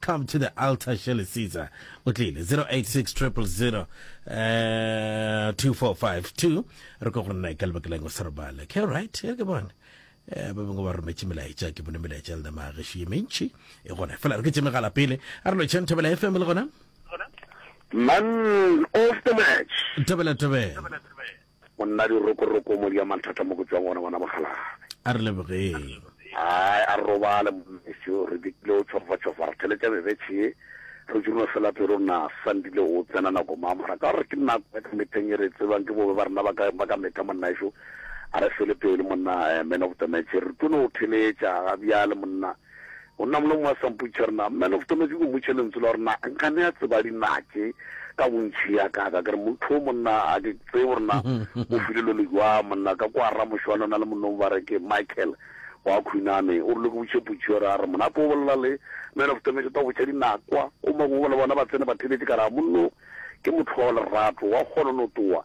Come to the altar, Shirley Caesar. Utlile 086000 uh, 2452. Re go go nna ka lebaka leng o sa robala. Ke right, e ke bona. Eh ba bangwe ba rometse melaetsa ke bone melaetsa le ma ge shi mentši e gona. Fela re ke tseme gala pele. A re lo chen thobela FM le gona. Man of the match. Thobela thobela. Monna dirokoroko mo dia mathata mo go tšwang gona gona mokgalabje. A re lebogeng. Ai a robale mmeso re dikile o tšhofa tšhofa re theletša bebetšhe ye re tšurno fela pero na sandile o tsena nako mang mara ka gore ke nako ya ka metheng ye re tsebang ke bobe ba rena ba ka ba ka metha monna ešo a re fele pelo monna eh, man of the match re tlo no o theletša ga bjale monna Go na mna mo a sa mpotšiša re na man of tona ke go mmotšiša lentswe la gore na nka ne a tseba dinake ka bontšhi ya ka ka kere motho o monna a ke tsee gore na o file lo le jwa monna ka kwa ra mošwana na le monnong ba re ke Michael wa khwinane o rile ke botše potšiša re a re mona po bolela le man of tona ke tla botša dinakwa o mangwe ba le bona ba tsene ba theletše ka ra monno ke motho wa lerato wa kgona no towa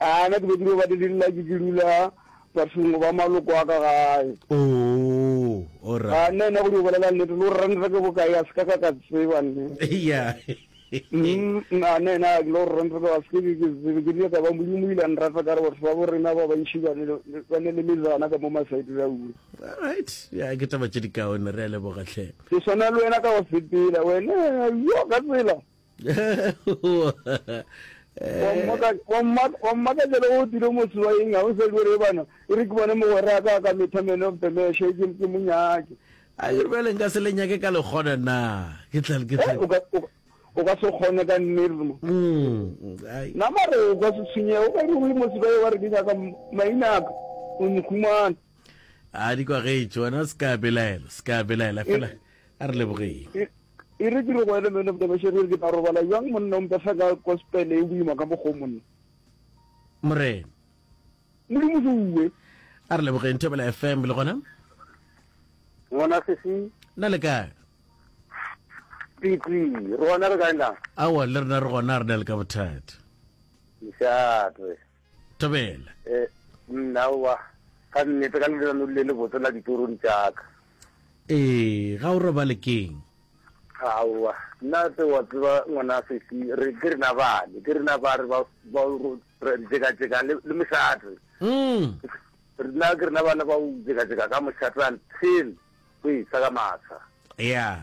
Aa, na ke be ke no ba dilelela ke ke dula bathong go ba maloko a ka gae? Oo, all Ga right. nna ena go di o bolela nnete, le gore ranta ke bokae a se ka ka ka tseba nne. Yeah. Mm, a nna ena a ke le gore ranta ke a se ke ke ke tsebe, ke rile ka ba Modimo o ile a nrata ka re batho ba bo rena ba bantši ba ne le ba ne le mezana ka mo masaeteng a ura. All right. Yeah, ke taba tše dikaone, re a leboga hle. Ke swana le wena ka go sepela, wena yo ka tsela wammakatšela o dire motse wa eng ga o sa dire bana e re ke bone mogwera ka ka metha man of the mesh e ke mo nyake a ke re le nka se le nyake ka le kgona na ke tla ke tla eh, o ka se kgone ka nnermo mm, na mare o ka se tshwenye o ka re o le motse ba wa re ke nyaka mainaka o nkhumana a di kwa ge e tswana ska belaela ska belaela fela a re lebogeng E re ke re go ene, Man of the Machine, e re ke tla robala bjang monna o mpefsa ka gospel e boima ka mokgwa o monna? Morena. Modimo Suwe. A re lebogeng Thobela FM le gona. Ngwana sesi. Na le kae? Piti, rona re kae na? Awa le rena re gona re na le ka bothata. Mshatwe. Thabela. Eh, nna wa ka nnete ka lenano le le botse la ditorong tšaka. Ee, ga o robale keng? Aowa, nna tse wa tseba ngwana sesi re ke rena bane, ke rena ba re ba ba ro re jeka jeka le le mošate. Mm. Rena ke rena bana ba u jeka jeka ka mošate until o e sa ka masa. Yeah.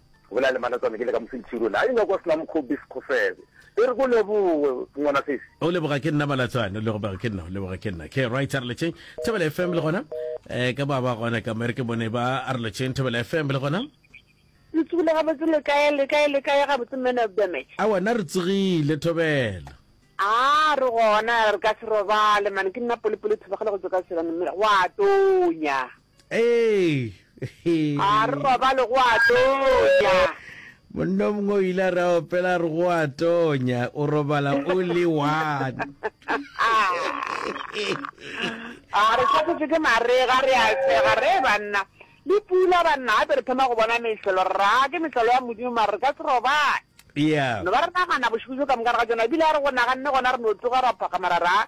Go bolela le Manatswana ke le ka Mosentširole. A inyoko sena mokgo bis kgofebe. E re ko leboge ngwana sesi. O leboga ke nna Manatswana. O leboga ke nna. O leboga ke nna. Ke right a re letšeng Thobela FM le gona. Eh ka ba ba gona ka mere ke bone ba a re letšeng Thobela FM le gona. Le tsogile gabotse le kae le kae le kae gabotse man of the match. Aowa na re tsogile Thobela. Aa re gona re ka se robale man ke nna Polepole Thobagale go tšwa ka Tshwane mme gwa tonya. A re robale go a tonya. Monna o mongwe o ile a re a opela a re go a tonya, o robala o le one. A re tshwasetswe ke marega re a sega re e banna. Le pula banna gape re thoma go bona mehlolo re ra ke mehlolo ya Modimo mare re ka se robale. Yeah. No ba re nagana bošego jo ka moka re ga tšona ebile a re go naganne gona re no tsoga ra phakgama ra ra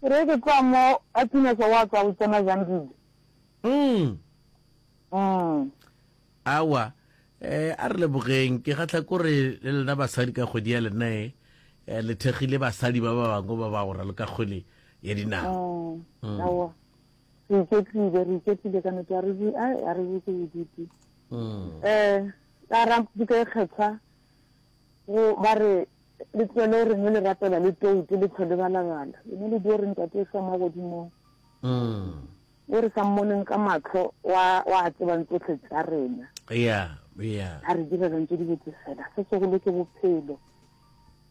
Ke re ke tloga mo a tsinesa wa tswa go tsena Zandile. Mm. Mm. Awa, eh, a re lebogeng. Ke kgatlha kore le lena basadi ka kgwedi ya lena e, eh, le thekgile basadi ba ba bangwe ba ba go ralo ka kgwele ya dinao. Mm. Mm. Awa, re iketlile, re iketlile ka nete, a re di, ai, a re di ke bodutu. Mm. Eh, ka ra dika e kgethwa, Go, ba re, Le tlogeleo re nwe le rapela le toutu le tlhole balabala. Lena le dio re Ntate efa mo godimong. Yo re sa mmoneng ka mahlo, o a, o a tsebang tsohle tša rena. Eya, eya. A re direlang tše dibotse fela. Se segolo ke Bophelo.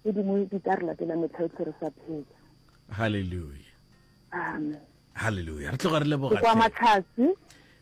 Tše dingwe di tla re latela mehla yohle re sa phela. Haleluya. Amen. Haleluya. Re tloga re leboga. Ke kwa Matlhatse.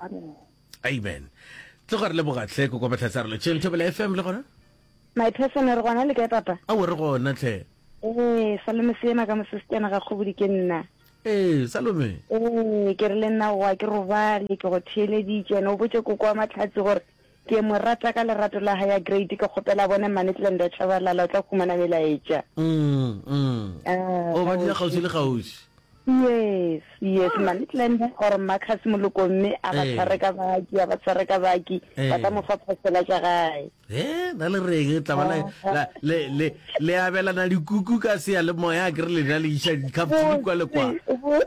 amen amen tlo gore le bogatlhe ko kwa tlhatsa re le tšeng thobela fm le gona my person re gona le kae papa a o re gona tlhe ee salome seema ka mosesitana ga kgobodi ke nna ee salome ee ke re le nna wa ke robale ke go theeleditše ene o botse koko wa matlhatsi gore Ke mo rata ka lerato la hae ya great ke kgopela bone mmane Tlenda Tshabalala o tla khumana melaetša. Umm umm Ah, oh ba dula kgauswi le kgauswi. Yes yes mmane Tlenda or Marcus Moloko mme a ba Eh. tshware ka baki a ba tshware ka baki Eh. ba tla mo fa phosela tša gae. He na le reng le tla ba la- la- le le le abelana dikuku ka seya le moya ke re le na le iša di-cups di kwa le kwa. Botse, bo-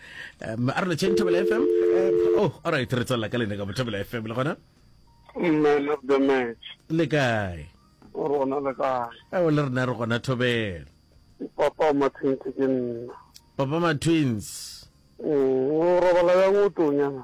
um a re le tšheng thobela fm eh, oh all right re tswelela ka lene ka bothobela fm le gona man of the match le kae rona le kae ao le rena re gona thobela papa wa mathinki ke nna papa ma twins Mm, o robala yang o tonyana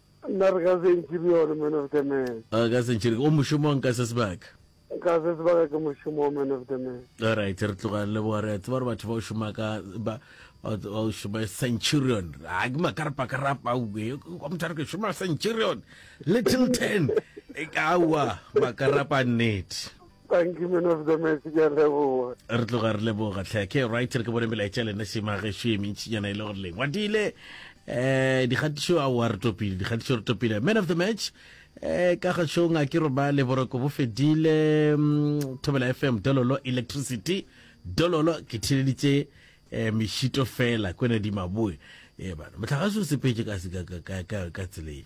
Nna re ka sentšhiri yone man of the man. A ka sentšhiri o mošomong ka se sebaka? Ka se sebaka ke mošomong man of the man. Alright re tloga le boa re a tseba gore batho ba o šoma ka ba ba o šoma centurion a ke makarapa karapa o be kwa motho re ke šoma centurion little ten e ka wa makarapa nnete. Thank you man of the match ke a leboga. Re tloga re leboga tlhe. Ke right re ke bone melaetša lena se mageso e mentšinyana e le gore leng. Wa dile eh dikgatišo a wa re topile dikgatišo re topile. Man of the match eh ka ga shong a ke robale boroko bo fedile mm, Thobela FM Dololo Electricity Dololo ke theleditše eh mešito fela kwena di maboe. Eh bana motlhagase o sepetše ka se- ka- ka- ka- ka- ka tseleng.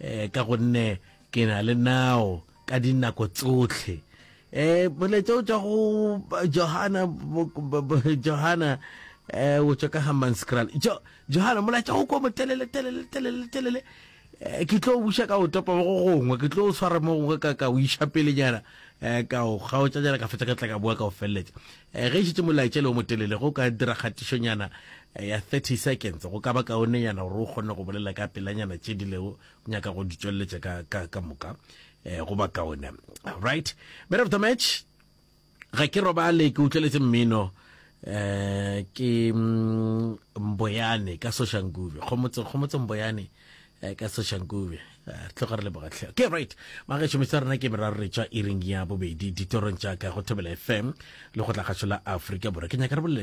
e, ka gonne ke na le nao ka dinako tsotlhe e molaetsa o tswa go johana johana um o tswa ka hammanscral johana molaetsa o kwa motelele telele telele telele Eh, ke tlo buša ka o topa mo go gongwe ke tlo o swara mo gongwe ka ka o iša pelenyana um eh, ka o kgaotšanyana ka fetsa ka tla ka bua ka o feleletša Ge e šetše molaetšele o motelele, go ka dira kgatišonyana ya 30 seconds go ka ba kaonenyana gore o kgone go bolela ka pelanyana tše di lego nyaka go di tšweletša ka, ka, ka moka go ba kaone. Right. Man of the match, ga ke robale ke utlweletse mmino um ke mm, mboyane ka soshankuve kgomotse kgomotse mboyane Eh, ka seshankube eh, re tloga re lebogatlhe okay right magetšho metse rena ke meraro re tšwa iring ya bobedi ditorong tša ka go thobela fm le go tla kgašo la aforika borwa ke nyaka re bolele